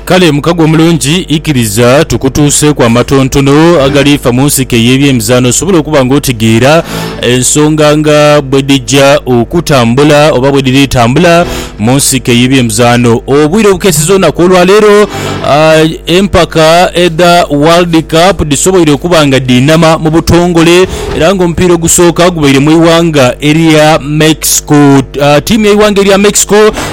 Kale mukago omulungi, ikiriza tukutuuseeku amatontono agali fa mu nsiko ey'ebyemizaano osobole okuba nga otegeera ensonga nga bwe dhija okutambula oba bwe dhiri tambula mu nsiko ey'ebyemizaano. Obwire obukeeseza olunaku olwaleero, ah, empaka edha World Cup dhisoboire okuba nga dhiinama mu butongole era nga omupiira ogusooka gubaire mu ighanga erya Mexico. Ah, Tiimu y'eighanga erya Mexico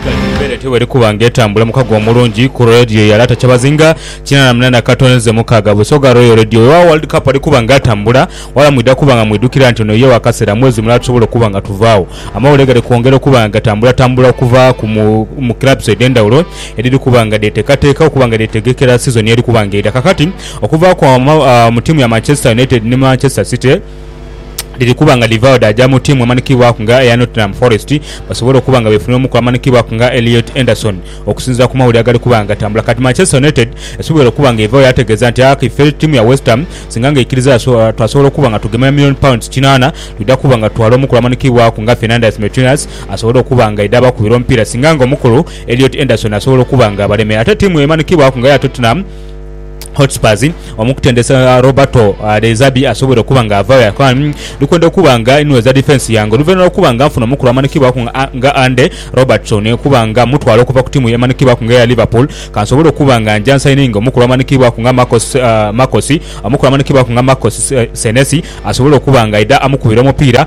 Embeera etyo bw'eri kuba nga etambula mu kago omulungi ku Radio ya Lata Kyabazinga kinaana na munaana Katonze mukaaga Busoga Royal Radio. Weewaawo World Cup ali kuba nga atambula wala mwidha kuba nga mwidhukira nti ono ye wa kaseera mwezi mulala tusobole okuba nga tuvaagho. Amawulire gali kwongera okuba nga gatambulatambula okuva mu clubs edh'endhawulo edhiri kuba nga dheteekateeka okuba nga dheetegekera sizoni eri kuba nga eidha. Kakati okuva mu ttiimu ya Manchester United ni Manchester City, dhiri kuba nga dhivaagho dhaaja mu ttiimu emanhikibwaku nga eya Nottingham Forest basobole okuba nga beefunira omukugu amanhikibwaku nga Elliot Anderson okusinziira ku mawulire agali kuba nga gatambula. Kati Manchester United esoboire okuba nga evaagho yaategeeza nti aah ife ttiimu ya West Ham singa nga eikiriza twasobola okuba nga tugemera million pounds kinaana twidha kuba nga tutwala omukulu amanhikibwaku nga Fernandes Metinas asobole okuba nga aidha abakubira omupiira singa nga omukulu Elliot Anderson asobola okuba nga abalemera. Ate ttiimu emanhikibwaku nga eya Tottenham Hotspurs omukutendesa Roberto De Zerbi asobweire okuba nga avayo aye Khan ndikwenda okuba nga inweza defence yange oluvanhuma lwokuba nga nfuna omukulu amanhikibwaku nga Andy Robertson okuba nga mutwala okuva ku tiimu emanhikibwaku nga eya Liverpool kansobole okuba nga njansaininge omukulu amanhikibwaku nga Marcos omukulu amanhikibwaku nga Marcos Senesi asobole okuba nga aidha amukubira omupiira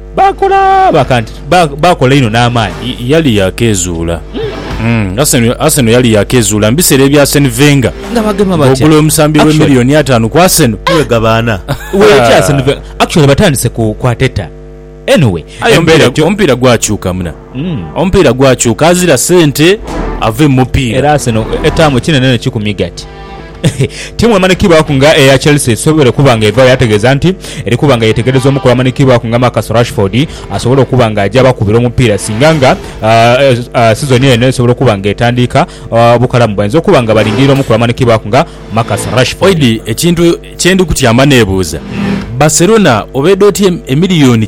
Baakola bakanti, baakola inho n'amaani. Yali yaakeezuula Arsenal yali yaakeezuula mu biseera ebya Arsene Wenger ng'ogula omusambi w'e miliyooni ataanu ku Arsenal. Aye omupiira gwakyuka muna. Omupiira gwakyuka azira sente ave mu mupiira. Era Arsenal etaamu ekinenenheiki ku migati. Ttiimu emanikibwaku nga eya Chelsea esobole okuba nga evaayo ategeeza nti eri kuba nga yeetegereza omukulu amanikibwaku nga Marcus Rashford asobole okuba nga aja abakubira omupiira singa nga sizoni eno esobola okuba nga etandiika obukalamu bainza okuba nga balindirira omukulu amanikibwaku nga Marcus Rashford. Ekintu kye ndi kutyama neebuuza, Barcelona oba edha otya emiliyoni.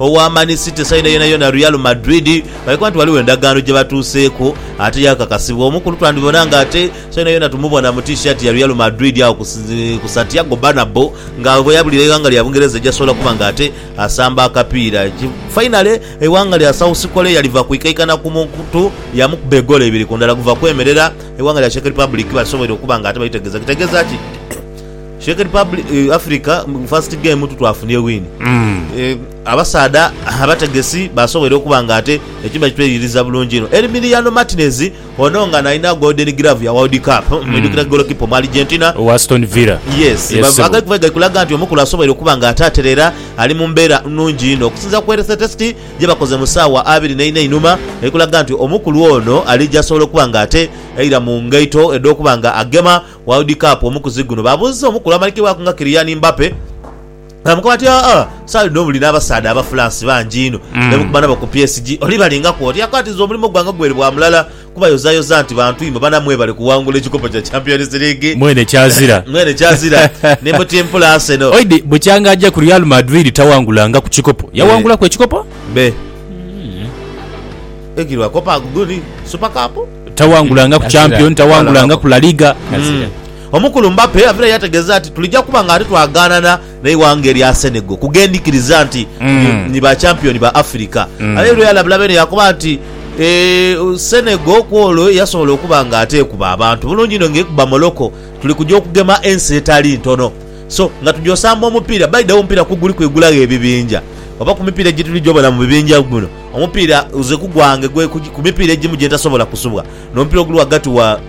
owa Man City sayina yonayona Real Madrid nga bwekoba nti ghaligho endagaano gye batuuseeku ate yaakakasibwa. Omu ku lu twandibona nga ate sayina yona tumubona mu T-shirt ya Real Madrid agho ku Santiago Bernabeu nga bwe yabulira eighanga lya Bungereza egy'asobola okuba nga ate asamba akapiira. Fainale, eighanga lya South Korea liva kwikaikana ku mukutu yamukuba egoolo ibiri ku ndala guva kwemerera, eighanga lya Czech Republic basobweire okuba nga ate balitegeeza. Kitegeeza ki? Czech Republic, Africa mu first game tu twafunye win. Abasaadha abategesi basoboire okuba nga ate ekimu bakitweyiririza bulungi inho. Emiliano Martinez, ono nga nalina Golden Glove ya World Cup, mwidhukira goolokipa Omualigentina. Owa Aston Villa. Yes, Yes, ssebo. agali kuva gali kulaga nti omukulu asoboire okuba nga ate aterera ali mu mbeera nnungi inho. Okusinziira ku health test gye bakoze mu ssaawa abiri n'eina einhuma eri kulaga nti omukulu ono alija asobola okuba nga ate aira mu ngaito edh'okuba nga agema World Cup, Omukuzi guno babuuzizza omukulu amanikibwaku nga Kylian Mbappe baamukoba nti, Aa, esaala dhino buli n'abasaadha Abafulansi bangi inho be bukuba nabo ku PSG. Oli balingaku oti? Yakoba ati, Nze omulimo gwange gwali bwa mulala kubayozayoza nti bantu inho bana mwebale kuwangula ekikopo kya Champions League. Mwene kyazira. Mwene kyazira. Ni mutimpula Arsenal. Oid bukyanga aja ku Real Madrid tawangulangaku kikopo. Yawangulaku ekikopo? Be. Ekiri bwa Copa Aguguni, Super Cup? Tawangulanga ku Champion, tawangulanga ku La Liga. Omukulu Mbappe avirayo yategeeza nti, Tulija kuba ng'ate twagaanana n'eighanga erya Senegal kugendhikiriza nti ni ba champion ba Africa. Avaireyo yalabula beene yaakoba nti, Senegal ku olwo yasobola okuba ng'ate ekuba abantu bulungi inho ng'ekuba Morocco. Tuli kuja okugema ensi etali ntono. So nga tuja osamba omupiira, by the way omupiira ku guliku igulagho ebibinja oba ku mipiira gyetulija obona mu bibinja muno. Omupiira nze ku gwange gwe ku mipiira egimu gye ntasobola kusubwa n'omupiira oguli ghagati wa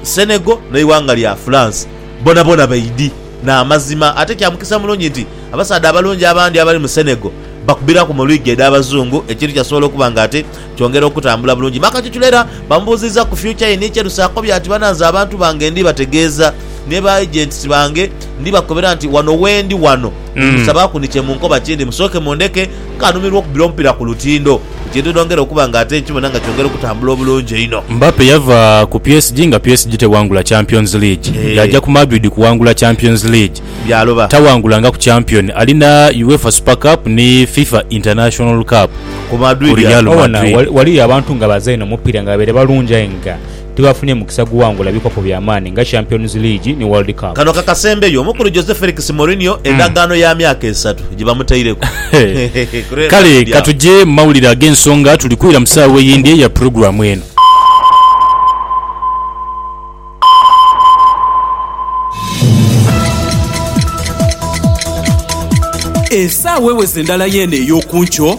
Senegal n'eighanga lya France. Boonaboona baidhi n'amazima ate kya mukisa mulungi nti abasaadha abalungi abandi abali mu Senegal bakubiraku mu liigi edh'Abazungu ekintu kyasobola okuba nga ate kyongera okutambula bulungi. Makachuchula era bamubuuzizza ku fyukya ye ni kyerusa akobye ati, Bananze abantu bange ndi bategeeza ni ba Agents bange ndi bakobera nti wano wendi wano, ndi musabaaku ni kye munkoba kindi musooke mundeke ng'anumirwa okubira omupiira ku lutindo, ekintu edhongera okuba nga ate nkibona nga kyongera okutambula obulungi einho. Mbappe yava ku PSG nga PSG tewangula Champions League, yaaja ku Madrid kuwangula Champions League. Byaloba. Tawangulangaku Champion, alina Uefa Super Cup ni Fifa International Cup ku Real Madrid. Obona ghaliyo abantu nga bazaina omupiira nga babaire balungi aye nga tibafunye mukisa guwangula bikopo bya maani nga Champions League ni World Cup. Kano kakasembeyo omukulu Jose Felix Mourinho endagaano ya myaka esatu gye bamutaireku. Kale ka tuje mu mawulire ag'ensonga tuli kwira mu saawa eyindi eya pulogulaamu eno. Esaawa eweze ndala yeene ey'oku nkyo.